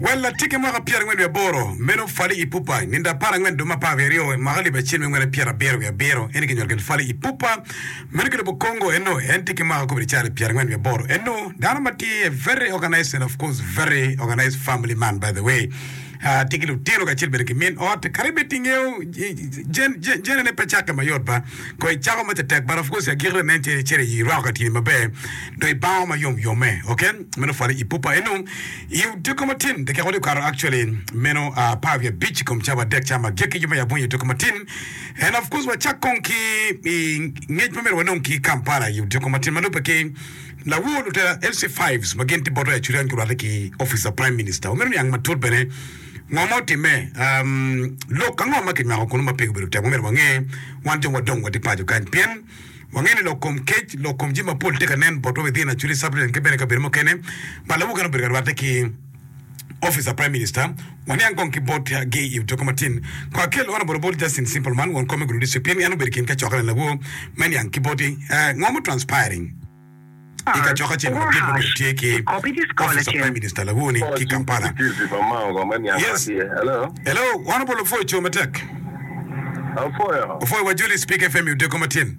Wel latiggi mwaka pyerangwen wiye aboro, meno Fally Ipupa. Nindo apar angwen dwe me apar wiye aryo, mwaka lib acel me ngwen apyer abiro wiye abiro, eni ki nyuol kit Fally Ipupa. Meno ki lobo Congo eno, en tye ki mwaka kobedi calo pyerangwen wiye aboro eno. Dano ma tye very organized and of course very organized family man by the way. Tye ki lutino kacel bene ki min ot kadi bed ingeyo jennene pe cakke mayot ba. Ko icako maca tek but of course agikki lanen calo calo irwako katini maber dong ibango ma yom yom me ok meno pwale i pupa eno i otyeko matin dakika wadi okato actually meno apar wiye abic i kom cawa adek cama agikki yoma ya bunyi otyeko matin and of course wacak kong ki i ngec ma meno wanong ki Kampala i otyeko matin ma lube ki Lawo lutela Elsie Fives ma gin tye bote acuc en gurwatte ki Office of Prime Minister. Wamito niang matut bene ngo ma otimme, um, lok ango ma kinywako kunu ma pe gubedo tek. Wamito wange wan jo wadong watye paco kany pien wange ni lok kom kec, lok kom jami mapol tye ka nen botwa wek dhi en acuc i subdivision ki bene i kabedo mukene ma lawo kene obedo ka rwatte ki Office of Prime Minister, waniang kong ki bot gi i duka matin. Kong akel oro bot obol Justin Simpleman, won kom me gudi district, pien en obedo i kin kacokke na lawo me niang ki boti eh, ngo mo transpiring i kacokke acel madit ma obedo tye ki Office of Prime Minister lawo ni ki Kampala. Yes, hello, wan obol opwoyo co matek. Opwoyo wa Julie Speak FM i duka matin.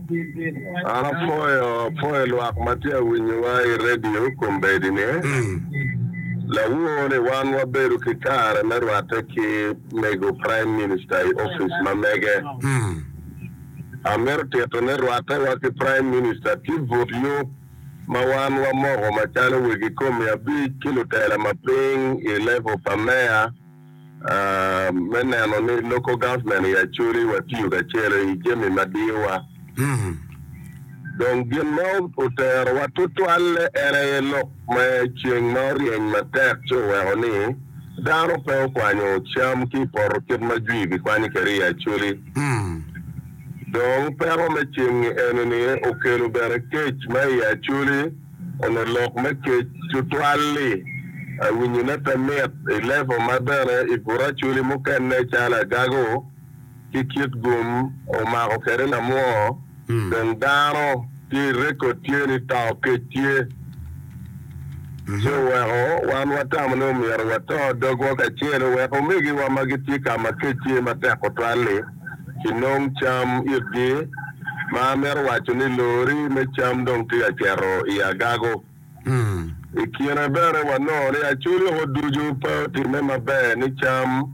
An apwoyo apwoyo lwak ma tye ka winyowa i redio kombeddi ni. Lawoo ni wan wabedo ki kare me rwatte ki mego Prime Minister i office ma mege. Amito tito ni rwatte wa ki Prime Minister ki but yub ma wan wamoko macalo wegi komi abic ki lutela ma piny i level pa Mayor, me neno ni local government i Acholi watiyo kacelo i jami ma diyowa. Dong gin ma oterowa tutwalle en aye lok me ceng ma oryeny matek ci oweko ni dano pe okwanyo cam ki i poto kit ma jwi gikwanyo kwede i Acholi. Dong peko me ceng-ngi eni-ni okelo bene kec ma i Acholi. Onongo lok me kec tutwal-li. Awinyone pe mit i levo ma bene i buraculi mukene calo agago ki kit gum omako kwede lamwoo dong dano tye i rekod tye ni tao kec tye ci oweko wan watamo ni omyero wato dogwa kacel wek omegiwa ma gitye ka ma kec tye matek tutwal-li. ki nong cam itgi, ma amito waco ni lori me cam dong tye ka cito i agago. I kine bene wanongo ni acoli oko ducu pe otimme maber ni cam.